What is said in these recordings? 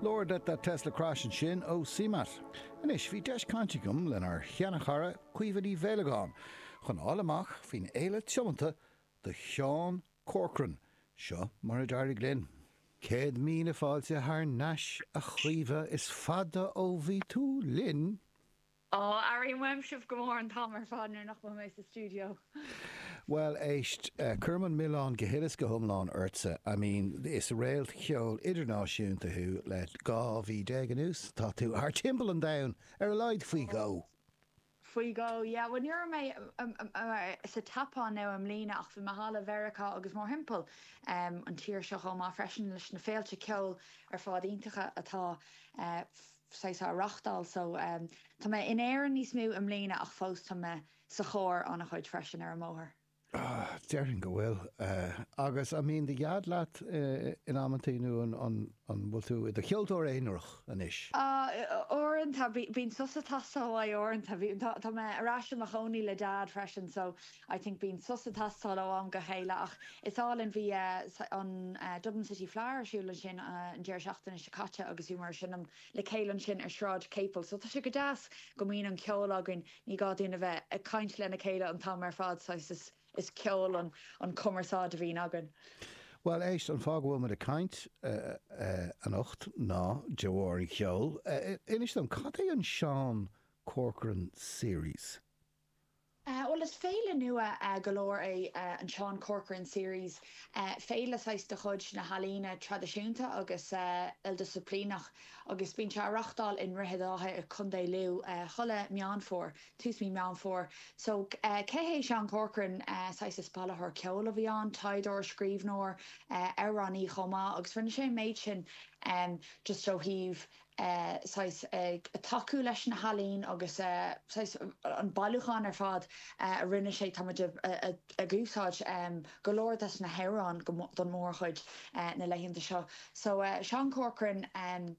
Lord let that Tesla crash ansin ó Seamatt. Anois, bhí deis cainte agam lenár sheanchara Caoimhe Ní Mhaolagáin chun a fháil amach faoin fhéile tiomnaithe do Sheán Corcoran. Seo mar a d'éirigh linn. Céad míle fáilte thar n-ais, a Chaoimhe, is fada ó bhí tú linn! Aww, airím uaim sibh go mór an t-am ar fad nuair nach bhfuil mé sa stiúideo. Bhuel, éist, cuirim an milleán go huile is go hiomlán ortsa. I mean, is réalt cheoil idirnáisiúnta thú le 12 mhí anuas, tá tú thart timpeall an domhain, ar a laghad faoi dhó! Faoi dhó, yeah. Bhuel, ní raibh mé sa tSeapáin, now, i mbliana ach bhí mé thall i Mheiriceá agus mórthimpeall an tír seo chomh maith freisin leis na féilte ceoil ar fad iontacha atá. sé á reachtáil so tá mé in Éirinn níos mó i mbliana ach fós tá mé sa charr ana chuid freisin ar an mbóthar. Ah, déarfainn go bhfuil. Agus an mbíonn do dheaid leat in amantaí nó an bhfuil tú i do cheoltóir aonarach anois? Ah, uaireanta bíonn sos atá sa bhaile so uaireanta tá mé ar ais i mo chónaí le deaid freisin so I think bíonn sos ag teastáil ó am go chéile ach is álainn, bhí an Dublin City Fleadh ar siúl ansin an deireadh seachtaine seo caite agus bhíomar ag seinm le chéile ansin ar Shráid Capel so tá sé go deas go mbíonn an ceol againn, ní gá dúinn a bheith ag caint lena chéile an t-am ar fad saghas, is ceol an chumarsáid a bhíonn againn. Bhuel éist, an fáth go bhfuil muid ag caint anocht ná de bharr an cheoil. Inis dom, cad é an Seán Corcoran Series? Bhuel is féile nua go leor é an Seán Corcoran Series, féile saghas de chuid na healaíne traidisiúnta agus ildisciplíneach agus bíonn sé á reachtáil i nDroichead Átha i Co. Lú chuile Meán Fómhair, tús mí Meán Fómhair. So cé hé Seán Corcoran? Saghas is bailitheoir ceoil a bhí ann, taighdeoir, scríbhneoir, amhránaí chomh maith agus rinne sé an méid sin just ó thaobh eh, saghas, ag tacú leis na healaíona agus eh, saghas, an bailiúchán ar fad eh a rinne sé, tá muid a, a, ag úsáid em go leor des na hamhráin go, don mórchuid eh na laethanta seo. So eh Seán Corcoran, em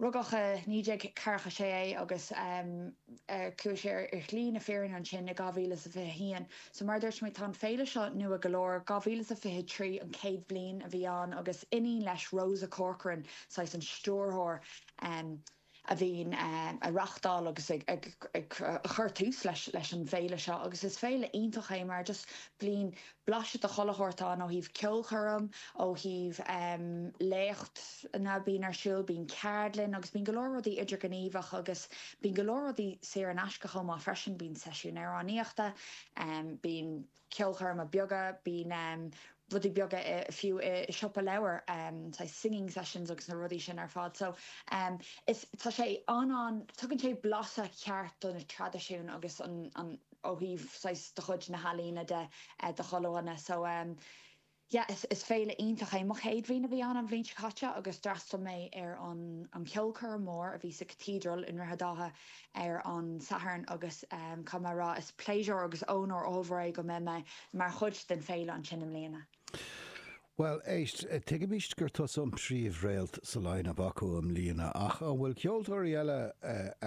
rugadh i 1946 é agus em. Chuaigh sé ar shlí na fírinne ansin i 2021. So mar a dúirt mé, tá an féile seo nua go leor. 2023 an chéad bhliain a bhí ann agus iníon leis, Rosa Corcoran, saghas an stiúrthóir, a bhíonn ag reachtáil agus ag cur tús leis an bhféile seo agus is féile iontach é mar just bliain Blaiseadh de chuile shórt ann, ó thaobh ceolchoirm, ó thaobh léachtanna, bíonn ar siúl, bíonn ceardlanna agus bíonn go leor rudaí idirghníomhach agus bíonn go leor rudaí saor in aisce chomh maith freisin, bíonn seisiúin amhránaíochta, bíonn ceolchoirmeacha beaga, bíonn rudaí beaga fiú i siopa leabhar, saghas singing sessions agus na rudaí sin ar fad. So is, tá sé an-an, tugann sé blaiseadh ceart do na traidisiúin agus an. ó thaobh saghas de chuid na healaíona de chuile ealaíon. So yeah is is féile iontach é. Mo chéad uair a bheith ann an bhliain seo caite agus d'fhreastal mé ar an an ceolchoirm mór a bhí sa Cathedral i nDroichead Átha ar an Satharn agus em caithfidh mé a rá is pléisiúr agus ónóir ollmhór é go mbeidh mé mar chuid den féile ansin i mbliana. Bhuel éist, tuigimse gur tusa an príomh réalt sa line-up acu i mbliana ach an bhfuil ceoltóirí eile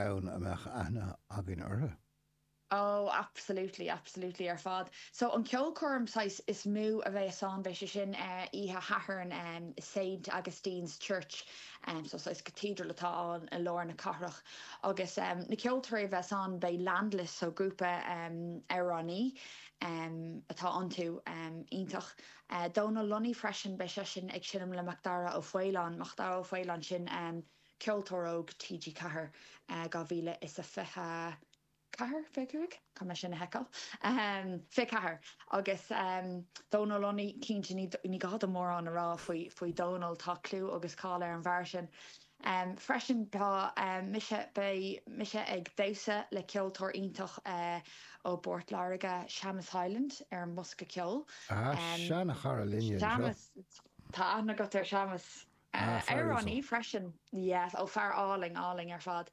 ann a mbeadh aithne againn orthu? Oh, absolutely, absolutely ar fad. So an ceolchoirm saghas is mó a bheas ann, beidh sé sin eh oíche Shathairn em i Saint Augustine's Church, em so saghas cathedral atá ann i lár na cathrach agus em na ceoltóirí a bheas ann beidh Landless, so grúpa em amhránaí em atá iontu em iontach eh Dónal Lunny freisin beidh seisean ag seinm le Macdara Ó Faoláin, Macdara Ó Faoláin sin em. Ceoltóir Óg TG4 2024, fiche cúig, sílim, sea, fiche ceathair. Agus Dónal Lunny, cinnte ní gá dom mórán a rá faoi Dhónal, tá clú agus cáil ar an bhfear sin. Freisin tá mise, beidh mise ag damhsa le ceoltóir iontach ó bPort Láirge, Séamus Hyland, ar an mbosca ceoil. Ah, seanachara linne anseo. Séamus, tá aithne agat ar Séamus. Ah, Fear fear uasal. uasal freisin. Yes, ó fear álainn, álainn ar fad.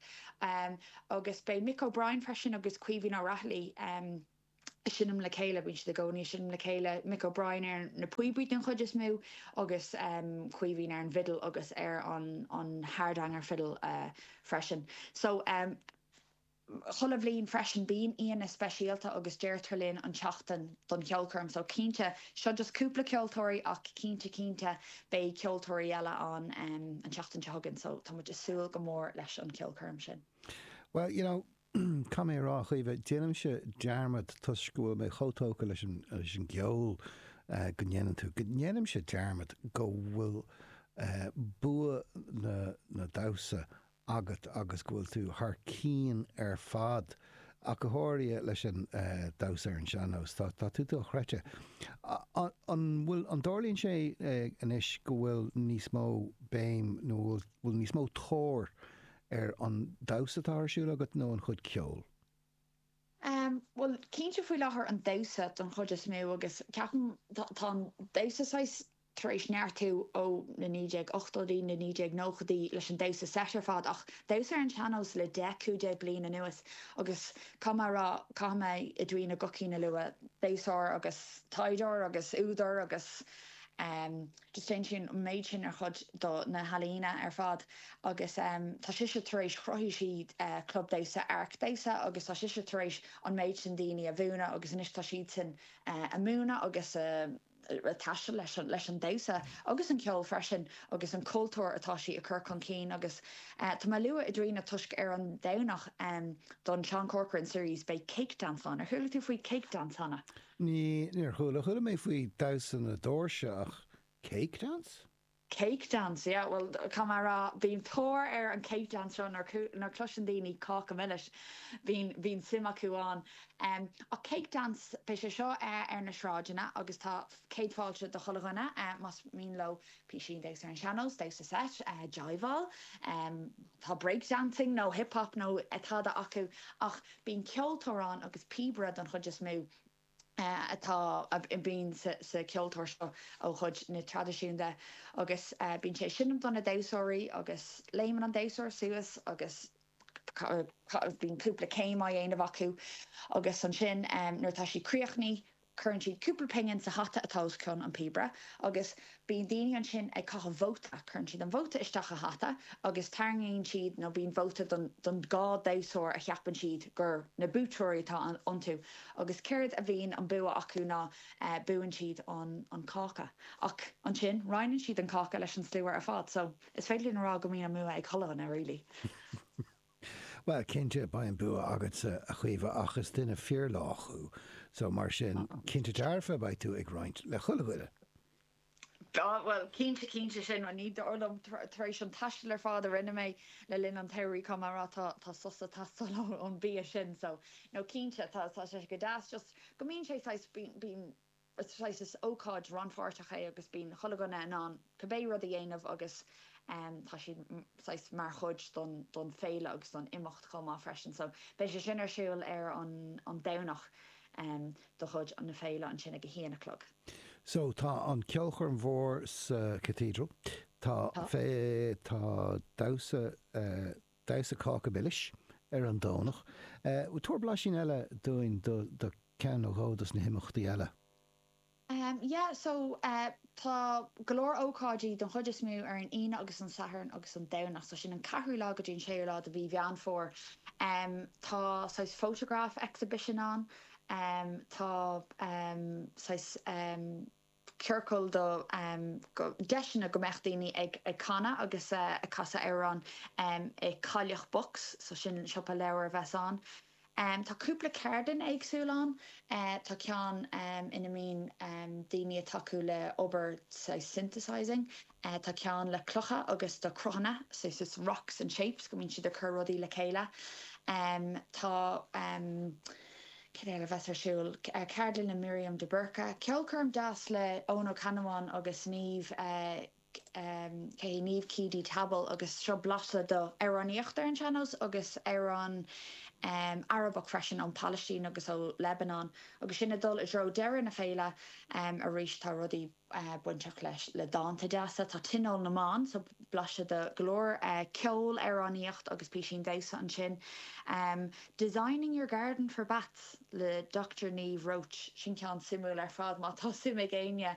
Agus beidh Mick O'Brien freisin agus Caoimhín Ó Raghallaigh ag seinm le chéile, bíonn siad i gcónaí ag seinm le chéile, Mick O'Brien ar na píobaí den chuid is mó agus Caoimhín ar an bhfidil agus ar an hardanger fiddle freisin. So. chuile bhliain freisin. Bíonn aíonna speisialta agus deirtear linn an tseachtain don cheolchoirm so cinnte, seo just cúpla ceoltóirí ach cinnte cinnte beidh ceoltóirí eile ann an tseachtain seo chugainn so tá muid a' súil go mór leis an cheolchoirm sin. Bhuel, you know, caithfidh mé a rá, a Chaoimhe, déanaimse dearmad toisc go bhfuil mé chomh tógtha leis an, leis an gceol go ndéanann tú, go ndéanaimse dearmad go bhfuil bua na, na damhsa agat agus go bhfuil tú thar cinn ar fad, ach go háirithe leis an damhsa ar an sean-nós. Tá tú dochreidte. An bhfuil, an dtarlaíonn sé anois go bhfuil níos mó béim nó an bhfuil níos mó tóir ar an damhsa atá ar siúl agat nó an chuid ceoil? Bhuel, cinnte faoi láthair an damhsa don chuid is mó agus ceapaim, tá an damhsa saghas tar éis neartú ó na 1980idí, na 1990idí leis an damhsa seit ar fad, ach damhsa ar an tseannós le deich, cúig déag bliain anuas agus caithfidh mé a rá, caithfidh mé Edwina Guckian a lua, damhsóir agus taighdeoir agus údar agus em just déanann sí an méid sin ar chuid do na healaíona ar fad agus em tá sise tar éis, chruthaigh sí eh club damhsa, Áirc Damhsa agus tá sise tar éis an méid sin daoine a mhúineadh agus anois tá siadsan eh ag múineadh agus ag taisteal leis an damhsa agus an ceol freisin agus an cultúr atá sí ag cur chun cinn agus tá mé ag lua Edwina toisc ar an Domhnach don Seán Corcoran Series beidh Cake Dance ann. Ar chuala tú faoi Cake Dance cheana? Níor chuala, chuala mé faoi damhsa na doirse ach Cake Dance? Cake dance, yeah, bhuel, caithfidh mé a rá, bíonn tóir ar an cake dance seo nuair, nuair chloiseann daoine Cáca Milis, bíonn, bíonn suim acu ann. Em, ach cake dance, beidh sé seo eh ar na sráideanna agus tá céad fáilte do chuile dhuine eh más mian leo písín damhsa ar an sean-nós, damhsa seit, eh jiveáil, má tá break dancing nó hip hop nó eh tada acu ach bíonn ceoltóir ann agus píobaire don chuid is mó. atá a bhíonn sa ceoltóir seo ó chuid na traidisiúnta agus bíonn sé ag seinm do na damhsóirí agus léimeann an damhsóir suas agus bíonn cúpla céim á dhéanamh acu agus ansin nuair atá siad críochnaithe cuireann siad cúpla pingin sa hata atá os cionn an píobaire agus Bíonn daoine ansin ag caitheamh vóta. Cuireann siad an vóta isteach i hata agus tarraingíonn siad, nó bíonn vóta don, don dhá damhsóir a cheapann siad gur na buaiteoirí atá iontu. Agus céard a bhíonn an bua acu ná buann siad an, an cáca. Ach ansin roinneann siad an cáca leis an slua ar fad. So, is féidir linn a rá go mbíonn an mbua ag chuile dhuine, really. Bhuel, cinnte, beidh an bua agatsa, a Chaoimhe, ach is duine fíorlách thú, so mar sin, cinnte dearfa, beidh tú ag roinnt le chuile dhuine. Ah, bhuel, cinnte, cinnte, sin an ní, dar liom, tar éis an taistil ar fad a rinne mé le linn an tsamhraidh, caithfidh mé a rá, tá sos ag teastáil ón mbia sin, so, no, cinnte, tá sé go deas, just, go mbíonn sé saghas, bíonn, bíonn. Saghas ócáid rannpháirteach é agus bíonn chuile dhuine in ann cibé rud a dhéanamh agus tá siad saghas mar chuid don féile agus don imeacht chomh maith freisin. So beidh sé sin ar siúl ar an an Domhnach de chuid na féile ansin ag a haon a chlog. So tá an ceolchoirm mhór sa Cathedral, tá Tá. tá damhsa, damhsa cáca milis ar an Domhnach. Tabhair blaisín eile dúinn de ceann nó dhó dos na himeachtaí eile. Yeah so tá go leor ócáidí don chuid is mó ar an Aoine agus an Satharn agus an Domhnach so sin an ceathrú lá go dtí an séú lá de mhí Mheán Fómhair. Tá saghas photograph exhibition ann, tá saghas. ciorcail do deiseanna go mbeadh daoine ag canadh agus ag casadh amhrán i Cailleach Box, so sin siopa leabhar a bheas ann. Tá cúpla ceardlann éagsúil ann, tá ceann ina mbíonn daoine ag tacú le obair saghas synthesising, Tá ceann le clocha agus do cruthanna, saghas rocks and shapes go mbíonn siad ag cur rudaí le chéile. Tá cad eile a bheas ar siúl, ceardlann le Miriam de Búrca, ceolchoirm deas le Eoghan Ó Ceannabháin agus Niamh, cé hí, Niamh Keady Tabbal agus seo blaiseadh de amhránaíocht ar an sean-nós agus amhráin Arabach freisin ón Phalaistín agus ó Lebanon. Agus sinn ag dul i dtreo deireadh na féile arís tá rudaí. bainteach leis le dánta deasa. Tá Tionól na mBan so blaiseadh de go leor ceol, amhránaíocht agus písín damhsa ansin. Designing your garden for bats le Doctor Niamh Roche, sin ceann suimiúil ar fad má tá suim ag éinne.